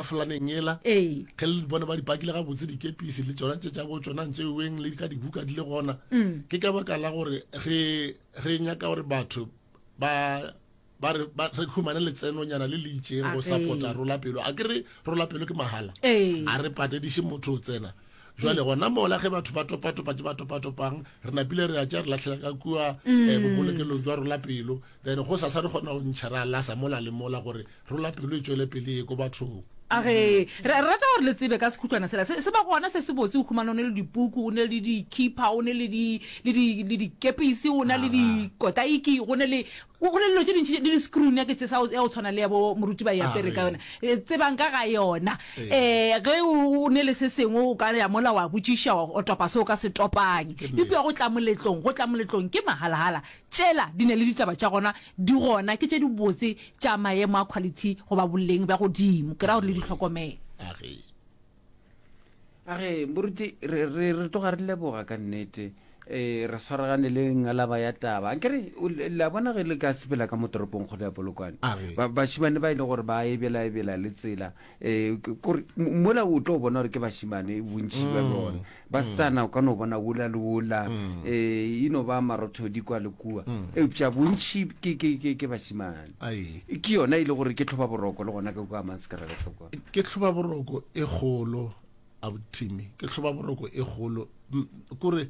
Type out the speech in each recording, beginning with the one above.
Flaneng yela Ee. ge le bona ba di pakile gabotse dikepisi le tsona tše tša bo tsona ntše weng le ka dibuka di le gona Mm. ke ka baka la gore re re nyaka gore batho ba ba re ba re humane letsenonyana le le itseng go Age. support-a rola pelo a ke re rola pelo ke mahala Ee. a re patediše motho o tsena jwale gona mola ge batho ba topatopa tše ba topatopang re napile re a tša re latlhela ka kua um bobolokelong jwa rola pelo then go sasa re kgona go ntšha ra lasa mola le mola gore Rola pelo e tšwele pele ye ko bathong. A re, Re rata gore le tsebe ka sekhutlwana sela. Se ba gona se se botse, o humana o ne le dipuku, o ne le dikhipa, o ne le di, le di, le dikepisi, o na le dikotaiki, go ne le, go ne le dilo tše dintši, le di-screw neck tše sa ya go tshwana le ya bo moruti ba yapere ka yona. E, tsebang ka ga yona. Um ge o ne le se sengwe o ka ya mola wa botšiša, wa o topa se o ka se topang. Eupša go tla moletlong, go tla moletlong ke mahalhala. Tšela di ne le ditaba tša gona, Di gona ke tše dibotse tša maemo a quality goba boleng bja godimo. Ke ra gore le di hlokomele. A re. A re, Moruti, re, re, re tloga re leboga ka nnete. E, re swaragane le ngalaba ya taba. A kere, o le le a bona ge le ka sepela ka mo toropong kgolo ya Polokwane. A re. Ba, bašimane ba e le gore ba ebelaebela le tsela. E, ke, kore, mo, mola o tlo bona gore ke bašimane, bontši bja bona. Basetsana o ka no bona wola le wola, e no ba marothodi kwa le kua, eupša bontši ke, ke, ke, ke bašemane. Ai. Ke yona e le gore ke tlhobaboroko le gona ka kua Manskraal kwa. Ke tlhobaboroko e kgolo, Abu Timmy, ke tlhobaboroko e kgolo. M, kore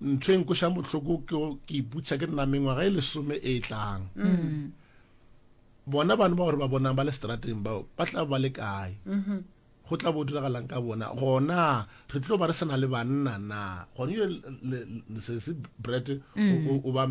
ntho e nkweša bohloko ke go, ke iputša ke nna mengwaga e lesome e tlang, bona bana bao re ba bonang ba le setrateng bao ba tla ba le kae? Go tla bo diragalang ka bona? Gona re tlo ba re sena le banna na? Gone yo lesese Brett mm. o ba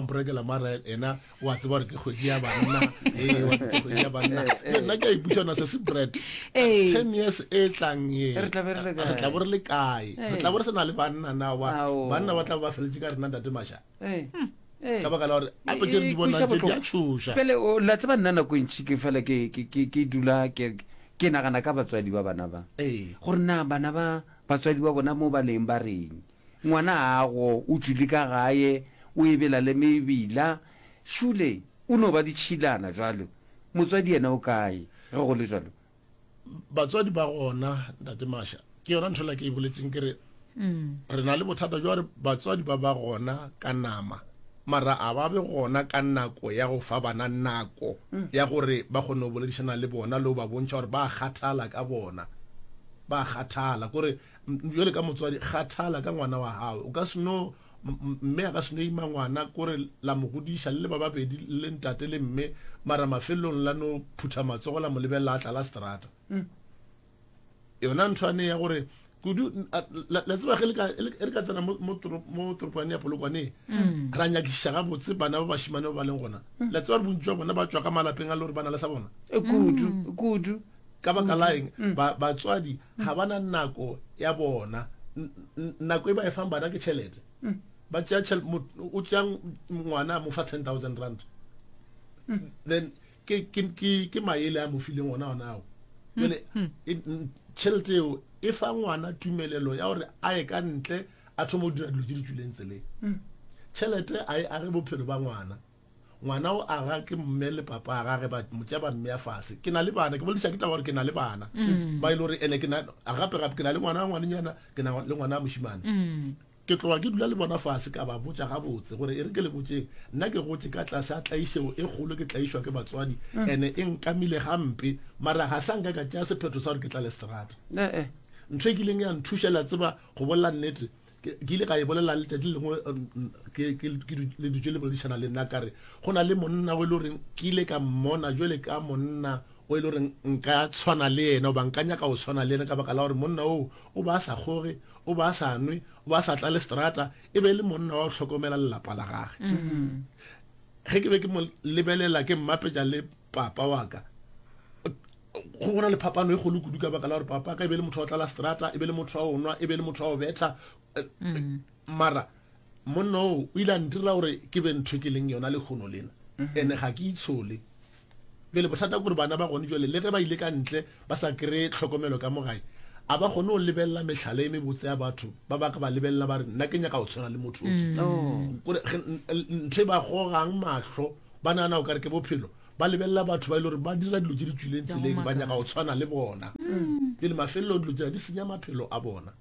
mporekela mara ena o a tseba gore ke kgwedi ya banna ee wa ke kgwedi ya banna nna ke a iputsa na sese Brett ten years e tlang ye re tla bo re le kae re tla bo re sena le banna na wa banna ba tla ba feletse ka rena ntate masha eh. hmm. Eh. ka baka la gore ape tse di bonang tse di a tshoša pele la tseba nna nako e ntšhi ke fela ke dula ke nagana ka batswadi ba bana ba eh. gore na bana ba batswadi ba bona mo ba leng ba reng ngwana gago o tswile ka gae o ebela le mebila šule o no ba ditšhilana jalo motswadi yena o kae ge go le jalo batswadi ba gona ntate masha ke yona ntho la ke e boletseng ke re mm. re na le bothata jwa gore batswadi ba ba gona ka nama mara a ba be gona ka nako ya go fa bana nako mm. ya gore ba kgone go boledišana le bona le go ba bontšha gore ba kgathala ka bona ba kgathala kore jale ka motswadi kgathala ka ngwana wa gago o ka seno Mme a ka seno ima ngwana kore la mo godiša le le ba babedi le ntate le mme mara mafelelong la no phutha matsogo la mo lebelela a tla la strata. Mm. Yona ntho ane ya gore kudu la tseba ge e re ka tsena mo toropane ya polokwane mm. ra nyakišiša gabotse bana ba bašimane ba ba leng gona mm. la tseba re bontsi jwa bona ba tswa ka malapeng a le gore ba na le sa bona e kudu kudu ka baka laeng batswadi ga ba na nako ya bona nako e ba e fang bana ke tšhelete ba tšea o tšea ngwana mo fa ten thousand rand then ke ke ke ke maele a mo fileng ona ona ao jale tšhelete eo e fa ngwana tumelelo ya gore a ye ka ntle a thoma go dira dilo tse di tswileng tseleng tšhelete a e age bophelo ba ngwana ngwana o aga ke mme le papa a gage ba motša ba mmea fase ke na le bana ke bolediša ke taba gore ke na le bana mm. ba e le gore ene ke gape gape ke na le ngwana wa ngwanenyana ke na le ngwana wa mošimane mm. ke tloga ke dula le bona fase ka ba botša gabotse gore e re ke le botseng nna ke gotse ka tlase a tlaišego e kgolo ke tlaišwa ke batswadi mm. ene e nkamile gampe mara ga sa nka ka tšea sephetho sa gore ke tla le seterata eh, eh. ntho e kileng ya nthušela tseba go bolela nnete ke ile ka e bolela letšatši le lengwe le dutše le boledišana le nna kare go na le monna o e le goreng ke ile ka mmona jale ka monna o e le goreng nka tshwana le yena oba nka nyaka go tshwana le yena ka baka la gore monna oo o ba a sa kgoge o ba a sa nwe o ba a sa tla le strata e be e le monna wa go tlhokomela lelapa la gage ge mm-hmm. ke be ke mo lebelela ke mmapetša le papa wa ka Go go na le phapano e kgolo kudu ka baka la gore papa ka e be le motho wa go tlala seterata, e be le motho wa go nwa, e be le motho wa go betla. Mara monna oo o ile a ntirela gore ke be ntho e ke leng yona lekgono lena, ene ga ke itshole. Bjale bothata ke gore bana ba gone jale le ge ba ile ka ntle ba sa kry-e tlhokomelo ka mo gae, a ba kgone go lebelela mehlala e mebotse ya batho ba ba ka ba lebelela ba re nna ke nyaka go tshwana le motho o ke. Kore ge n- n- ntho e ba gogang mahlo ba nagana o ka re ke bophelo ba lebelela batho ba e le gore ba dira dilo tse di tswileng tseleng ba nyaka go tshwana le bona pele mafelelong dilo tsena di senya maphelo a bona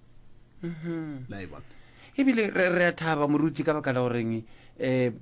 la e bona ebile re re a thaba moruti ka baka la goreng um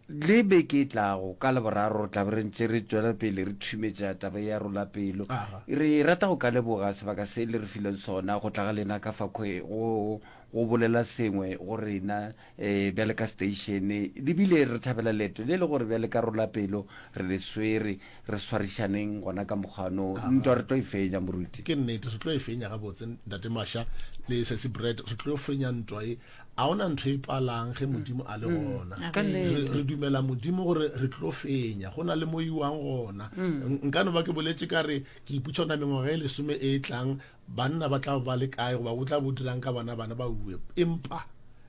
le beke e tlago ka leboraro re tlabe re ntse re tswela pele re thumetsa taba ya rola pelo Aha. re rata go ka leboga sebaka se le re fileng sona go tla ga lena ka fa kgwe go go bolela sengwe go rena E, bjale ka steišene, le bile re thabela leeto le le gore bjale ka rolapelo re le swere, re swarišaneng gona ka mokgwa no. Ntwa re tlo e fenya, moruti. Ke nnete, re tlo e fenya gabotse, Ntate Masha le Sesi Brett, re tlo fenya ntwa ye. A ona ntho e palang ge Modimo a le gona. Ka Re, nnete. re dumela Modimo gore re tlo fenya, go na le mo iwang gona. N- Nka no ba ke boletše ka re, ke iputša ona mengwaga e lesome e e tlang, Banna ba tla ba le kae goba go tla bo dirang ka bona bana ba uwe? Empa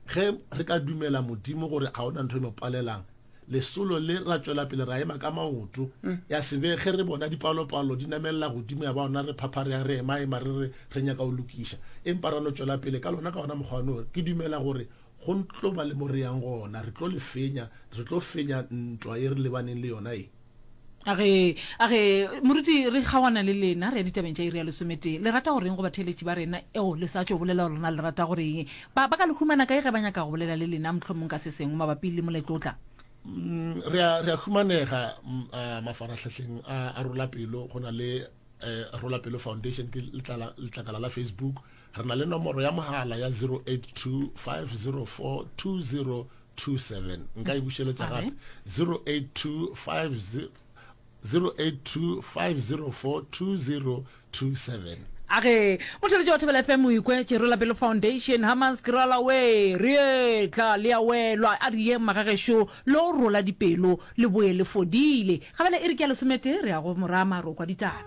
ge re ka dumela Modimo gore ga ona ntho e mo palelang, lesolo le ra tšwela pele ra ema ka maoto. Ya se be ge re bona dipalopalo di namelela godimo ya ba gona re phaphareya re emaema re re re nyaka go lokiša, empa ra no tšwela pele ka lona ka wona mokgwa ono. Ke dumela gore go tlo ba le mo re yang gona. Re tlo le fenya. Re tlo fenya ntwa ye re lebaneng le yona ye. a re a re moruti re kgawana le lena re ya ditabeng tša iri ya lesometee le rata goreng go batheeletši ba rena eo le sa tšo bolela gore rena le rata goreng ba ba ka le humana kae ge ba nyaka go bolela le lena mohlomong ka se sengwe mabapi le moletlotla Mm, re a re a humanega mm, a, mafarahlahleng a a rola pelo go na le eh, rola pelo foundation ke letlala- letlakala la facebook re na le nomoro ya mogala ya 082 504 20 27 nka e bušeletša gape 0825 0825042027 age motšheletše wa thobela fm o ikwe tšerola pelo foundation hamans kerala we re tla le ya welwa a riye magagešo lo rola dipelo le boye le fodile gabele e re ke ya lesometee re ya go morama ro kwa ditaba